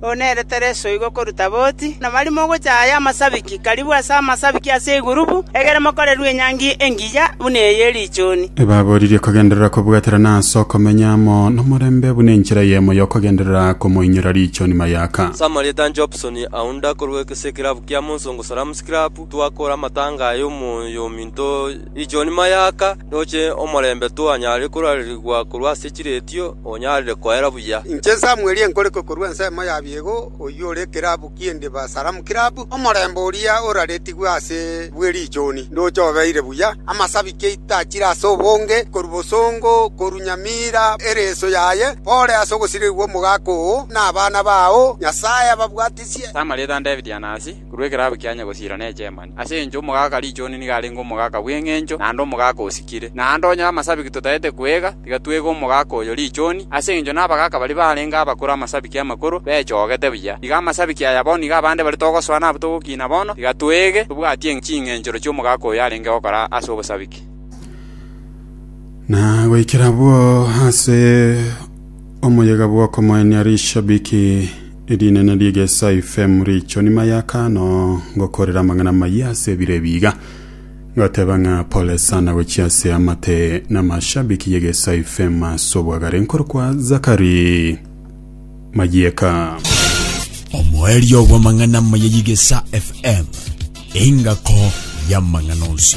oo nere Tereso igo koruta boti, na barimo ogocha aya amasabiki, karibu ase amasabiki ase egurubu, egere mokorerwe enyangi engiya buna eye ye richuni. Ebaboririe kogenderera kobwaterana ase okomenya amo nomorembe buna enchera eyemo y'okogenderera komoinyora richuni mayaka. Ase amarieta anche Hobson Aunda korwa ase ekerabu kia Monsongo Salams Club, twakora amatanga aya omoyo ominto, Inchuo nyuma y'aka ndoche omorembe twanyare korarerigwa korwa ase chiretio, onyarire koera buya. Inche Samweli enkorikwe korwa ensemo ya biego, oyio ore ekerabu ki'endiba Salamu Kirabu, omorembe oria oraretigwe ase bwe richuni, ndoche obeire buya. Amasabiki aito achire ase obonge, korwa bosongo, korwa nyamira, ereso yaye, pore ase ogosirigigwa omogaka oo, na abana bao, Nyasae ababwatisie. Samweli etandebirie Anasi, korwa ekerogo kiaye gosiira nechemani. Ase enchwa omogaka Richoni nigo arenge omogaka bw'engencho, naende omogaka osikire. Naende onye amasabiki totaete kwega, tiga twege omogaka oyo Richoni, ase engencho nabagaka baria barenge abakoro amasabiki amakoro bechogete buya. Iga amasabiki aya bono nigo abande baria togosoa nabwo togokiina bono, tiga twege tobwatie ching'enchero chi'omogaka oyo arenge gokora ase obosabiki. Na goikera abwo ase omoyega bw'okomoenia rishabiki Erinene ri'egesaifee muricho nimayaka ano ngokorera amang'ana amayia ase ebiro ebi iga. Ngoteba ng'a pole sana gochia ase amate namashabiki y'egesaifee ime ase obwagare nkorokwa Zakari Mayieka. Omoerio bw'amang'ana amaya y'Igesa FM, engako y'amang'ana onsi.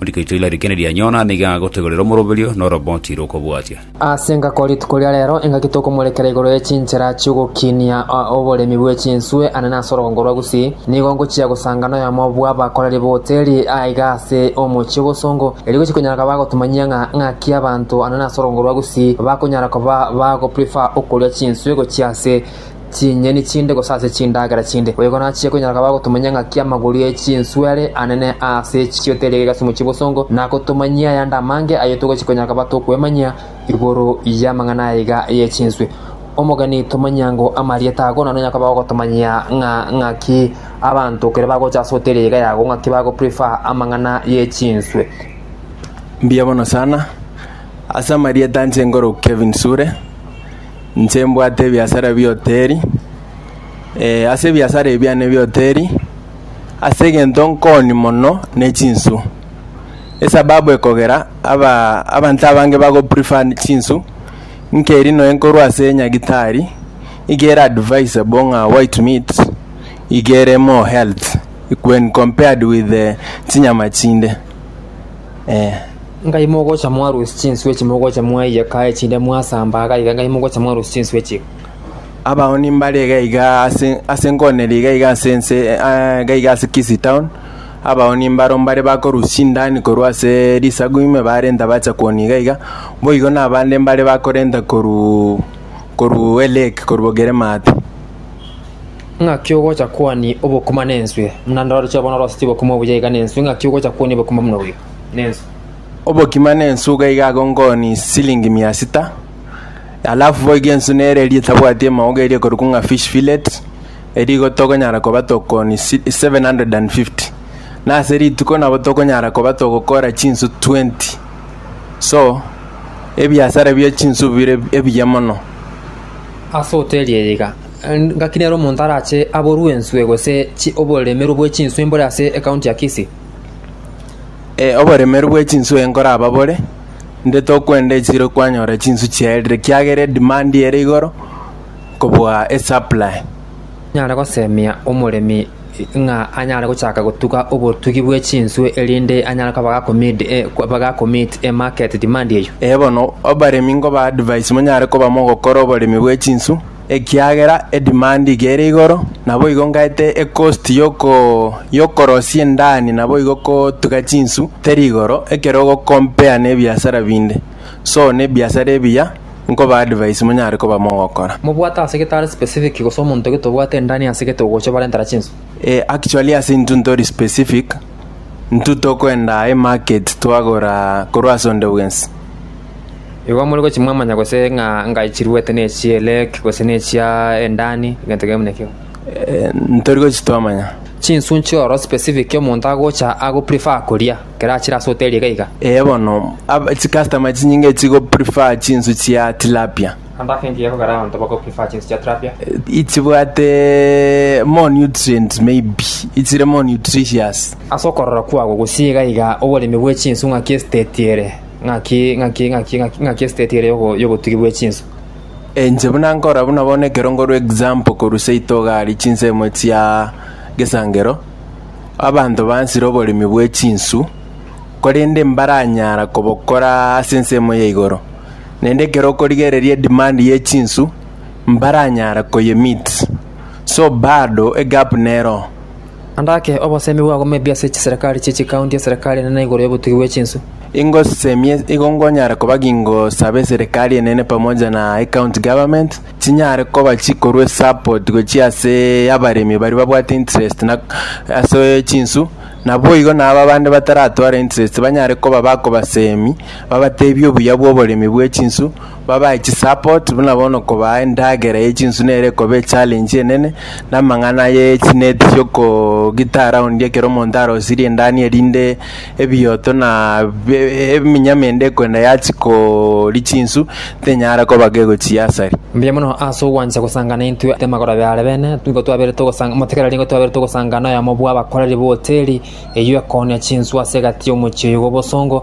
Rigecho ila rikende rianyona nigo agotegorera omoroberio na oroboti rokobwatia. Ase engaki o rituko ria rero, engaki tokomorekera igoro ye chinchera chi'ogokinia oboremi bwe chinswe anene ase orogongo rwa Gusii, nigo ngochia gosanga noyomo bw'abakoreri b'hoteli aiga ase omochie bw'osongo, erio gochia konyara koba agotumanyia ng'a ng'aki abanto anene ase orogongo rwa Gusii bakonyara koba bagoprefer okoria chinswe gochia ase chinyeni chinde gose ase chindagera chinde. Boigo nachie konyora koba agotumanyia ng'aki amagori e chinswere anene aase chiote eria gegasimo chi'obosongo, na agotumanyia ayande amange ayio togochia konyora koba tokwemanyia igoro y'amang'ana aiga ye chinswe. Omogeni tomanyia ngo amarieta ago naro nonya koba ogotomanyia ng'a ng'aki abanto ekero bagocha ase hoteri aiga yago ng'aki bago prefer amang'ana ye chinswe. Mbuya bono sana, ase amarieta nche nkoroku Kevin Sure. Inche mbwate ebiasara bi'ehoteri, ee, ase ebiasara ebi biane bi'ehoteri, ase egento nkoonia mono ne chinsu, esababu ekogera abaa abanto abange bago prefer chinsu, nkeri nonya nkorwa ase nyagitari, iga ere advisable ng'a white meat iga ere more health when compared with chinyama chinde. Eh, ngai mogocha mwarusi chinswe echi mogocha mwaiyeka echinde mwasamba agaiga ngai mogocha mwarusi chinswe echi abao nimbare iga iga ase ase nkoneri iga iga ase ense eh, iga iga ase Kisii town abao nimbaro mbare bakorusia chindani korwa ase risagu ime barenta bacha koni iga iga boigo na abande mbare bakorenta koru koru elake koru bogeremate Ng'aki ogocha kwania obokima nenswe, buna ndoreche bono orosetie obokima obuya iga nenswe, ng'aki ogocha kwania obokima buna obuya nenswe? Obokima nensu iga iga agonkoni silingi mia sita alafu boigo ensu nere eria etabwati emauga eria ekorokwa ng'a fish fillet eria igo tokonyara koba tokoni 750 nase rituko nabo tokonyara koba togokora chinsu 20 so ebiasara bia chinsu bire ebiya mono. Ase hoteli eye iga. Ngaki nere omonto arache aborwe enswe gose oboremeru bwe chinswe mbore ase ekaunti ya Kisii? Ee, oboremeru bwe chinswe nkoraba bore, inde tokwenda echiro kwanyora chinswe chiaerire ekiagera edemand ere igoro kobua esupply. Nyare gosemia omoremi ng'a anyare gochaka gotuga obotugi bwe chinswe erinde anyare koba gakomeet emarket demand eyio? Ee bono, abaremi nkoba advise monyare koba mogokora oboremi bwe chinswe. ekiagera edimandi iga ere igoro, naboigo ngaete ekosti y'oko y'okorosia endani naboigo kotuga chinsu teri igoro ekero ogokompea nebiasara binde. So nebiasara ebiya nkoba advice monyare koba mogokora. Mobwate ase gete are specific gose omonto gete obwate endani ase gete ogocha bare ntara chinsu? Eh actually ase intwe ntori specific, intwe tokoenda aye market twagora korwa ase onde bwensi. Igo more gochia mwamanya gose ng'a engae chiruete ne chia Eleki, gose ne chia Endani, egento kebe buna ekio. Eh, ntori gochi twamanya. Chinsu nchioro specific omonto agocha ago prefer koria, ekero achire ase hoteli iga iga. Eye bono ab- chicustomer chinyinge chigo prefer chinsu chia tilapia Ande ake engiya ekogera abanto bako prefer chinsu chia tilapia. ichibwate more nutrient maybe ichire more nutritious Ase okorora kwabo gose iga iga oboremi bwe chinsu ng'aki esiteti ere? Ng'aki, ng'aki, ng'aki, ng'aki, ng'aki esiteti ere y'ogo- y'obotugi bwe chinsa. Inche buna nkora buna bono ekerongo rwa example korwa seito iga aria chinsemo chia gesangero, abanto bansire oboremi bwe chinsu, korende mbaranyara kobokora ase ensemo ya igoro. Naende ekero okorigereria edemand ye chinsu, mbaranyara koye meet. So bado egap neroo. Naende ake obosemi bwagwo moebi ase chiserekari chie chikaunti eserekari enene igoro y'obotugi bwe chinsu. Ingosemie igo nkonyara koba gingosabe eserekari enene pamoja na ecounty government chinyare koba chikorwa esupport gochia ase abaremi baria babwate interest na ase chinsu naboigo na aba bande bataratwara interest banyare koba bakobasemi babatebie obuya bwa oboremi bwe chinsu Babae chisupport buna bono kobaa endagera ye chinswe nere ekoba echallenge enene, na amang'ana aye ye chineti chiokogita around ekero omonto arosirie endani erinde ebioto na be eminyama ende ekoenda yachia koria chinsu tenyara koba gegochia asari. Mbuya mono ase ogwancha gosanga naintwe ase amagoro abe are bene, nigo twabere togosanga motigari nigo twabere togosanga noyomo bw'abakoreri b'ehoteli eyio ekooonia chinswe ase egati y'omochie oyo bw'obosongo,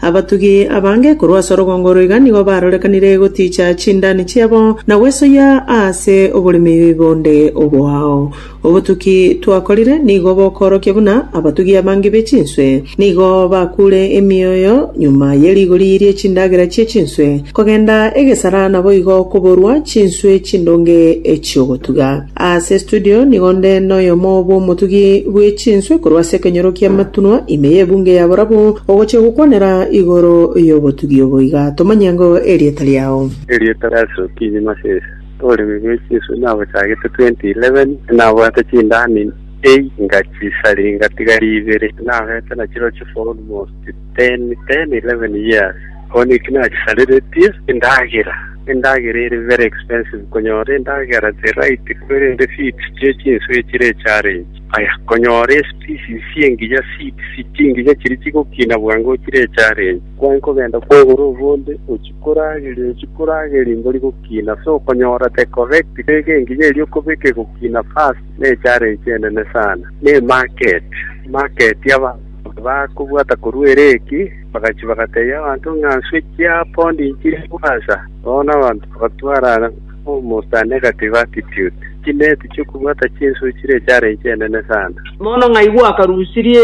Abatugi abange korwa ase orogongo oro iga nigo barorekanire gotiicha chindani chiabo na gwesoyia aase oboremi bonde oboao. Obotuki twakorire nigo bokorokia buna abatugi abange be chinswe nigo bakuure emioyo nyuma ye rigori rie chindagera chie chinswe kogenda egesara naboigo koborwa chinswe chindonge echi'ogotuga. Ase estudio nigo nde noyomo bw'omotugi bwe chinswe korwa ase ekenyoro ki'amatunwa ime y'ebunge ya borabu, ogochia gokwanera igoro y'obotugi obo iga. Tomanye ng'o erieta riao. Erieta ria Yeso Okinyi Masese. Oboremi bwe chinswe nabochagete 2011, nabwate chindani einga chisari ngatiga ibere, nabete nachireo chifour almost. Ten, ten, eleven years bono eki nachisareretie endagera, endagera ere very expensive, konyora endagera the right kwerende feeds chie chinsu echire echallenge. Aya, konyora especies chiengiya, seeds, chingiya chiri chigokina bwango chire echallenge. Kwai kogenda kogora obonde ochikorageria, ochikorageria mbori gokina, so konyora the correct bega engiya eria okobeka egokina fast ne echallenge enene sana. Ne market, market aba. Bakobwata korwa ere eki, bagachia bagatebia abanto ng'a nswe chia pondi nchire bwansa. Bono abanto bagatwarana almost a negative attitude, chineeti chi'okobwata chinswe chire echaara enchie enene sana. Bono ng'ai gwakarusirie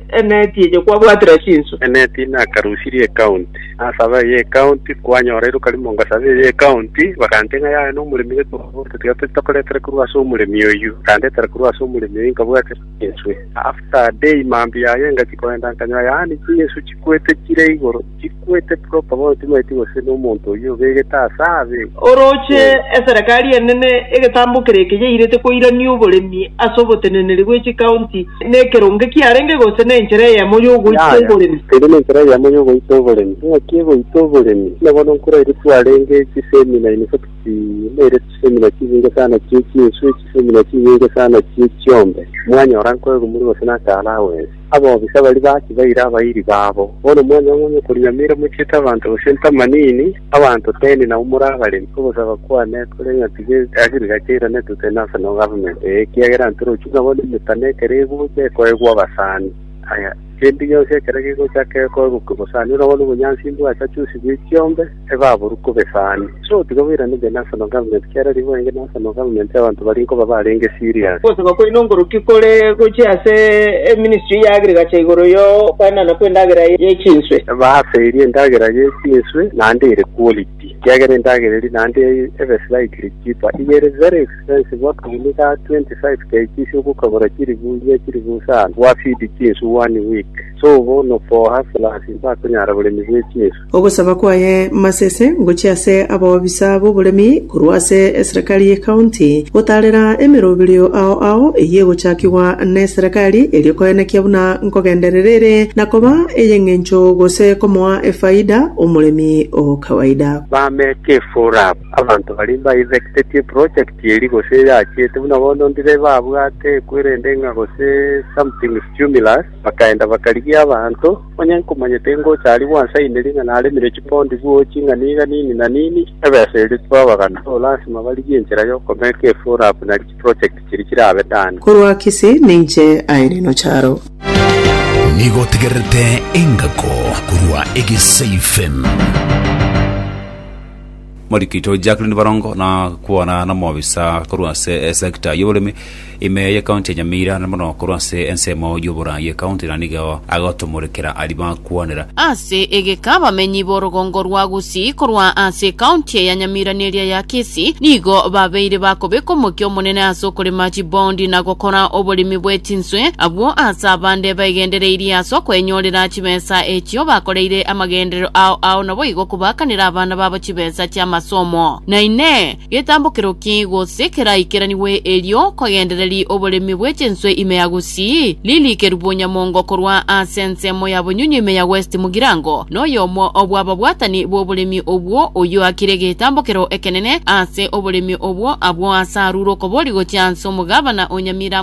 eneeti eye kwabwatire chinswe? Eneeti nakarusirie ekaunti. Nasaba eye ekaunti, kwanyora iroka rimo ngasaba eye ekaunti, bagantebia ng'a yaya nomoremi gete obwate tiga tari tokoretera korwa ase omoremi oyio, bakandetera korwa ase omoremi oyio nkabwatera. Yeswe. After a day mambia aye ngachia koenda nkanyora yaani chingesu chikwete chire igoro, chikwete proper bono timaeti gose nomonto oyio obegete ase abe. Orooche eserekari enene egetambo kere eke yairete koirania oboremi ase oboteneneri bwe chikaunti nekeronge kiarenge gose nenchera eyemo yogoita Yaya, oboremi. Keria nenchera eyemo yogoita oboremi. Engaki egoita oboremi, buna bono nkoraire twarenge chisemina in fact naire chisemina chibinge sana chie chinsu echi. Simura chinyinga sana chie chiombe, mwanyora nkoegumuru gose naka alawensi. Abobisa baria baki baire abairi babo. Bono mwanyong'onya okorinyamera mochiete abanto gose ntamanini, abanto teni nabo more abaremi. Ogosaba kwane kore ng'a tiga ekeagirika keiranetwe kegene ase no government eye, ekiagera ntorochio nabo nemetano ekero egocha ekoegwa abasani. Aya, kende gionsi ekero gegocha ake ekoegokwa bosani, orabone obonyansi mbwacha chionsi bwe chiombe. ebaborwe kobesani. So tiga boirane the national government kiara ribu enge national government y'abanto baria nkoba barenge serious. Ogosaba kwaino nkoruki kore gochia ase eministry ya agriculture igoro y'okoenana kw'endagera y'echinswe? Baase eria endagera y'echinswe naende ere quality, ekiagera endagera eria naende ebe slightly cheaper. Iga ere very expensive akaguni ga 25 kgs ogokagora chiribu inye chiribu isano gwa feed chinswe one week. So bono for hustlers mbakonyara boremi bw'echinswe. Ogosaba kwaye Masese ngochia ase abaobisa b'oboremi korwa ase eserekari ye county gotaarera emeroberio ao ao eyio egochakigwa neserekari erio koenekia buna nkogenderera ere na koba ey'eng'encho gose komoa efaida omoremi o kawaida. Bameka efora aba, abanto baria mba effected e project eria gose eyachiete buna bono ndire babwate ekwere ende ng'a gose something stumulus. Bakaenda bakarigia abanto, onye nkomanya tingocha aria gwansa ime ring'ana aremire chimbondi bwo ching'ana iga nini na nini, ebesa eria tibabagana. Igo lasima barigie enchera y'okobeka efuru abu nari chiprojekti chiria chirabe Dan. Korwa Kisi ninche Irene Ocharo. Nigo otegererete engako korwa Egesaifm. Morikito Jacqueline Barongo nakwana n'omobisa korwa ase esegita y'oboremi ime y'ekaunti ya Nyamira na mono korwa ase ensemo y'oboraa y'ekaunti na nigo agotomorekera aria bakwanera. Ase egeka abamenyi b'orogongo rwa Gusii korwa ase ekaunti ya Nyamira na eria ya Kisii nigo babeire bakobeka omokia omonene ase okorema chiboondi na gokora oboremi bwe chinswe. Abwo ase abande baegendereirie ase okoenyorera chibesa echio bakoreire amagenderero. amagenderero ao ao naboigo kobaakanera abana babo chibesa chi'amasomo. Na inee! Getambokero ki gose keraikeranigwe erio kogendereri oboremi bwe chinswe ime ya Gusii? Lili Kerubo Nyamongo korwa ase ensemo ya Bonyunyu ime ya West Mugirango noyomo bw'ababwatani b'oboremi obwo oyio akire egetambokero ekenene ase oboremi obwo abwo ase arure okobori gochia ase omogabana o Nyamira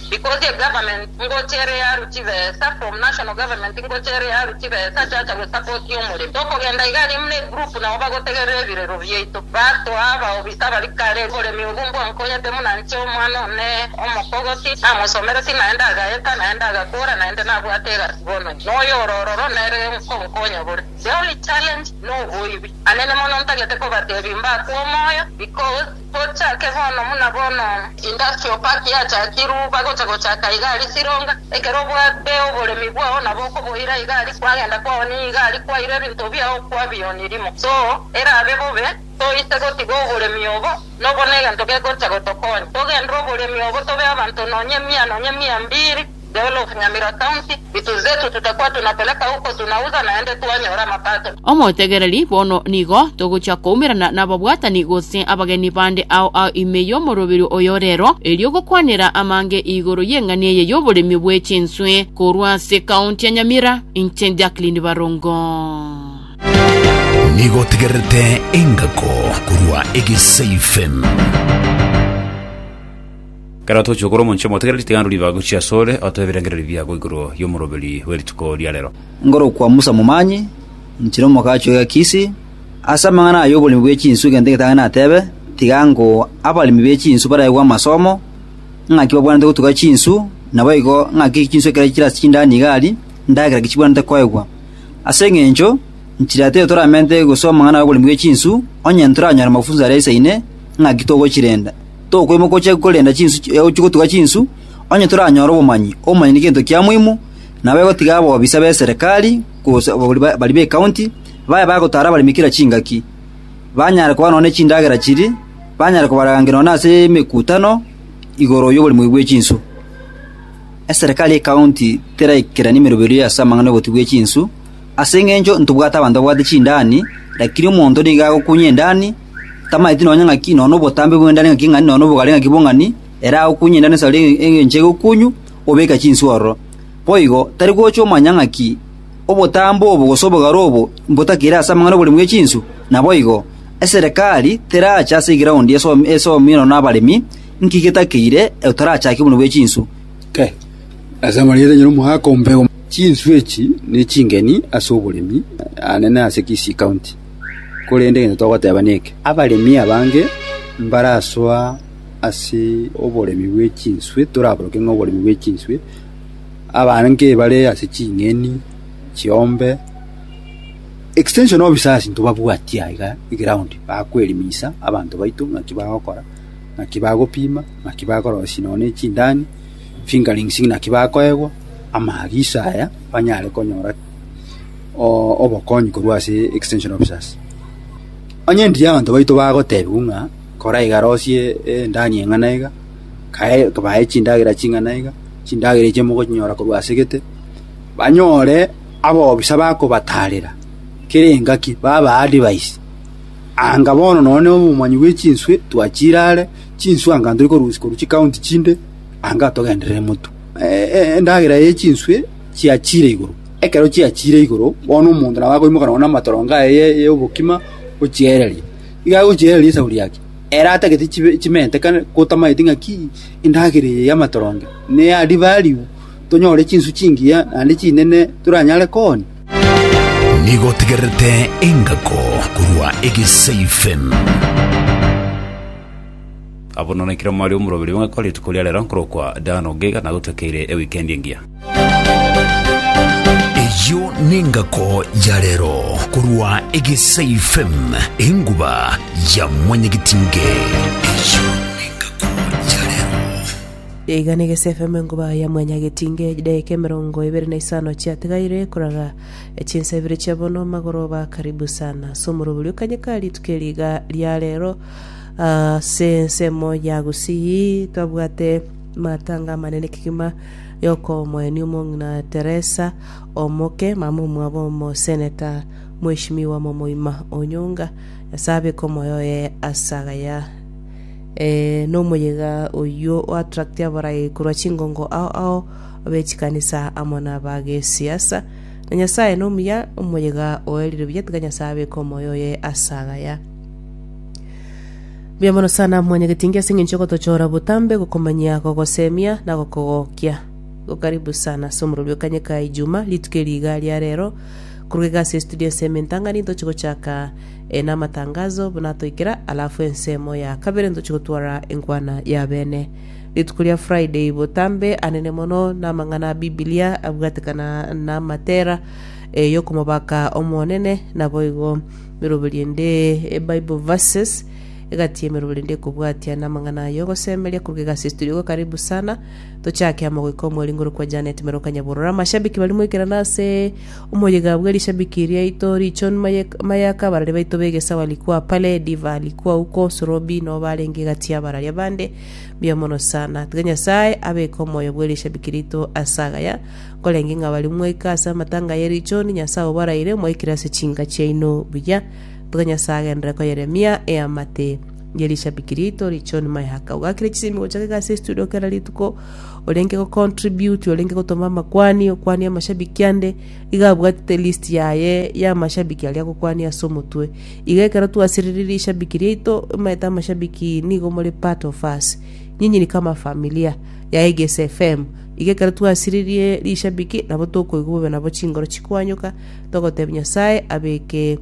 Because ye government ngocha ere yaru chibesa from national government ngocha ere yaru chibesa chacha go support omoremi. Tokogenda iga aria muna egroup nabo bagotegerera ebirero biaito. Batwa aba obisa abari kare oboremi obu mbwa nkonyete muna nche omwana one omokogoti namosomereti naende agaeta naende agakora naende nabwate egasi bono ime. Noyo ore ororo nere nkonkonya bore. The only challenge noboibi. Anene mono ntagete kobatebia mbakwe omoyo because. Gochake bono buna bono. Industry of park yachakirwe bagocha gochaka igari chironga, ekero obwate oboremi bwao nabo okoboira igari kwagenda kwaonia igari kwaira ebinto biao kwabionirimwa so erabe bobe toise gotiga oboremi obo nobo negento gegocha gotokonya togendere oboremi obo tobe abanto nonya mia nonya mia mbiri Dole of Nyamira County, vitu zetu tutakuwa tunapeleka huko tunauza naende twanyora mapato. Omotegereri, Bono nigo togochia koumerana nababwatani gose abageni bande ao ao ime y'omoroberio oyo rero, erio gokwanera amange igoro y'eng'ani eye y'oboremi bwe chinswe korwa ase County ya Nyamira. Inche Jacqueline Barongo. Nigo otegererete engako korwa Egesaifm. Ekero tochia korwa omonche omotegereri, tiga ndorue ribaga gochia asore, otoe ebirengererio biago igoro y'omoroberi bwe rituko ria rero. Ngorokwa Musa Momanyi, nchire omokachi oye Kisi, ase amang'ana aya y'oboremi bwe chinsu egento egetang'ani natebe, tiga ngo abaremi be chinsu baraegwe amasomo, ng'aki babwanete gotuga chinsu, naboigo ng'aki chinsu ekero chire ase chindani iga aria, ndagera ki chibwanete koegwa. Ase engencho, nchire ati erio toramente gosoa amang'ana y'oboremi bwe chinsu, onye ntoranyore mafunso aria aisaine, ng'aki togochirenda. tokoimoka oche korenda chinsu oche gotuga chinsu, onye toranyore obomanyi. Obomanyi negento kia moimo, nabo egotiga abobisa b'eserekari, gose ababori ba- baria b'ekaunti, babe bagotara abaremi kera chingaki, banyare koba nonya ne chindagera chiria, banyare kobararangeria nonya ase emekutano igoro y'oboremi oyo bwe chinsu. Eserekari y'ekaunti teraikeranie emeroberio ase amang'ana y'obotugi bwe chinsu, ase eng'encho ntobwate abanto babwate chindani, rakini omonto nigo agokunya endani, tamaeti nonya ng'aki, nonya nobotambe bw'endari ng'aki ng'ani, nonya nobogare ng'aki bong'ani, ere agokunya endari na esauri engencho egokunywa, obeke chinswe ororo. Boigo, tari gocha omanya ng'aki obotambe obo gose obogare obo mbotakire ase amang'ana 'oboremi bwe chinswe? Naboigo, eserekari terache ase egraondi esoomi nonya abaremi, inki getakeire otarachake oboremi bwe chinswe? Ase amarieta onye nomoaka ombe chinswe echi ne chingeni ase oboremi, aane nase Kisii County. Korende egento togoteba neke, abaremi abange mbarasoa ase oboremi bwe chinswe, toraboroke ng'a oboremi bwe chinswe, abange bare ase ching'eni, chiombe, extension of bisasi ntobabwatie aiga eground bakwerimisa abanto baito ng'aki bagokora, ng'aki bagopima, ng'aki bakorosia nonya ne chindani, fingerings ng'aki bakoegwa, amaagiso aya banyare konyora. oo obokonyi korwa ase extension officers. Onye ndiye abanto baito bagotebiwa ng'a kora iga rosie endani eng'ana iga, kae bae chindagera ching'ana iga, chindagera echi mogochinyora korwa ase gete, banyore abofisa bakobatarera kera engaki baba advise. Anga bono nonye na obomanyi bwe chinswe twachire are, chinswe anga ntori korusia korwa chikaunti chinde, anga togenderere motwe. Endagera ya chinswe chiachiire igoro. Ekero chiachiire igoro, bono omonto nabo akoimoka nonya namatorongo aye y'obokima ochiereria. Iga agochiereria esauri yake, ere atagete chibe chimente kare gotamaeti ng'aki endagera eye y'amatoronge neya ribe aribu tonyore chinswe chingiya naende chinene toranyare koonia. Nigo otegererete engako korwa egesaifemu. Abwo nonya kera mware omoroberi ogokora rituko ria rero nkorokwa Dan Ogega nagotokeire ewikendi engiya. Eyio nengako ya rero korwa Egesai FM enguba ya mwanyagetinge. Eyio nengako ya rero. Iga na Egesii FM enguba ya mwanyagetinge edaika emerongo ebere na isano chiatigaire koraga chinsa ibere chia bono magoroba karibu sana ase omorobori o kanya ka rituko eri iga ria rero Ase ensemo ya gusii twabwate matanga amanene kegima y'okomoenia omong'ina Teresa omoke, mama omwabo omoseneta mweshimiwa momoima Onyonga. Nyasae abeke omoyo oye ase agaya eh, nomoyega oyio o attract abarai korwa chingongo ao ao be chikanisa amo na ba gesiasa. Na Nyasae nomuya, omoyega oerire buya tiga Nyasae abeke omoyo oye ase agaya. Mbuya mono sana mwanyagetingi ase eng'encho yogotochora botambe, gokomanyia, gogosemia na gokogokia. Igo karibu sana ase omorori bwa Kanyeka Ijuma, rituko eri iga ria rero. Korwa iga ase estudio ensemo entang'ani ntoche gochaka eh, namatangazo buna toikera, alafu ensemo ya kabere ntoche gotwara enkwana ya bene. Rituko ria Friday botambe anene mono namang'ana a Bibilia abwatekana namatera eh, yokomobaka Omonene, naboigo Emeroberio ende e Bible Verses, Egati y'emeroberio ende ekobwatia na amang'ana aye ogosemeria korwa egasi estudio gwa Karibu Sana. Tochake amo goika omweringo ore kwa Janet Mero Kanyaborora. Amashabiki barimo ekerano ase omoyega bwe rishabiki riaito Richon Maye- Mayaka, abarari baito b'egesawa Likua Pale, Diva, Likua Uko, Sorobi nao barenge egati y'abarari abande. Mbuya mono sana. Tiga Nyasae abeke omoyo bwe rishabiki rito ase agaya. Korende ng'a baria mwaika ase amatanga ye richoni, Nyasae obaraire mwaikire ase chinka chiaino buya, tiga Nyasae agenderere koyeremia eamate ye rishabiki riaito richoni mayaka. Ogakire chisemi gocha gega ase estudio kera rituko, orenge go contribute, orenge gotoma amakwani, okwanie amashabiki ande, iga abwatete list yaye ya amashabiki aria agokwania ase omotwe. Iga ekero twasiririe rishabiki riaito, omanyete amashabiki nigo more part of us. Nyinyi ni kama familia ya Egesi FM. Iga ekero twasiririe rishabiki nabo tokoigwa bobe nabo chingoro chikoanyoka, togotebia Nyasae abeke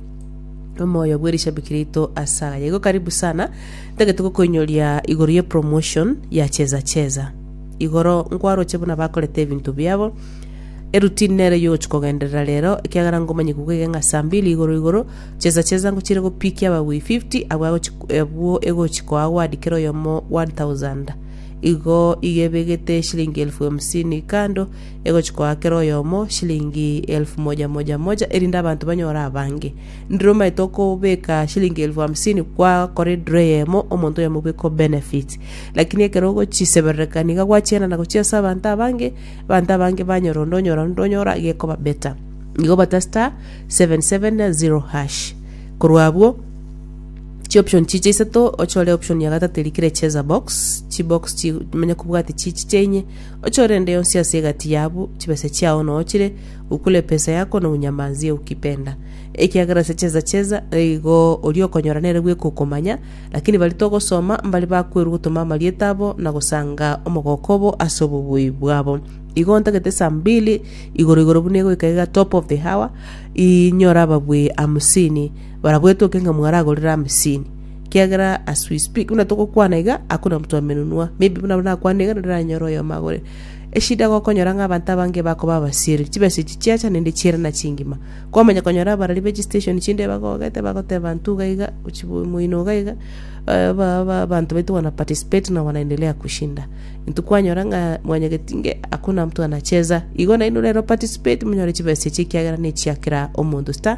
omoyo bwe rishabiki riaito ase aye. Igo karibu sana, ntagete gokoinyoria igoro ye promotion ya Cheza Cheza. Igoro nkwaroche buna bakorete ebinto biabo, eroutine nere yogochia kogenderera rero, ekiagera ngomanye kuga iga ng'a saa mbili igoro igoro, Cheza Cheza ngochire gopikia abagwei 50, abwo agochi- abwo egochi koa award kera oyomo 1000. Igo igebegete eshilingi elfu hamsini kando, egochia koa kera oyomo shilingi elfu moja moja moja, erinde abanto banyore abange. Ndire omaete okobeka shilingi elfu hamsini kwakora ediro eyemo, omonto oyomo bweka o benefit. Lakini ekero ogochiseberereka niga gwachienana gochia ase abanto abange, abanto abange banyora onde onyora onde onyora iga ekoba better. Nigo obate star, seven, seven, zero, hash. Korwa abwo. Chi option chiche isato ochore option ya gatato eri kere cheza box chi box chi manya kobwate chi chiche inye ochore ende yonsi ase egati yabu chibesa chiao no ochire ukule pesa yako no unyamanzie ukipenda ekiagera ase cheza cheza igo ori okonyora nere bweka okomanya lakini bari togosoma mbari bakwerwa gotoma amarieta abo na gosanga omogoko obo ase obobui bwabo igo ntagete saa mbili igoro igoro buna egoika iga top of the hour inyore ababui hamsini. Barabwo etoke ng'a mwaragorire amesini, ekiagera as we speak buna togokwana iga hakuna mtu amenunua, maybe buna nakwane iga naende naranyore oyomo agore. Eshida gokonyora ng'a abanto abange bakoba abasieri, chibesa echi chiacha naende chiere na chingima. Kwamanya konyora abarari be chistation chinde bagogete bagoteba banto iga iga, ochibu moino iga iga, eh, ba ba abanto baito wana participate na wanaendelea kushinda. Intwe kwanyora ng'a mwanyageti nge hakuna mtu anacheza, igo nainwe rero participate monyore chibesa echi ekiagera nechia kera omonto star.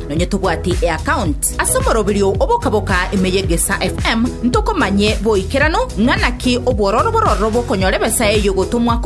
Nonye tobwati eaccount ase omoroberio obokaboka ime y'Egesaa FM, ntokomanye boikeranu ng'a naki obwororo bororo bokonyora ebesa eyio gotomwa korwa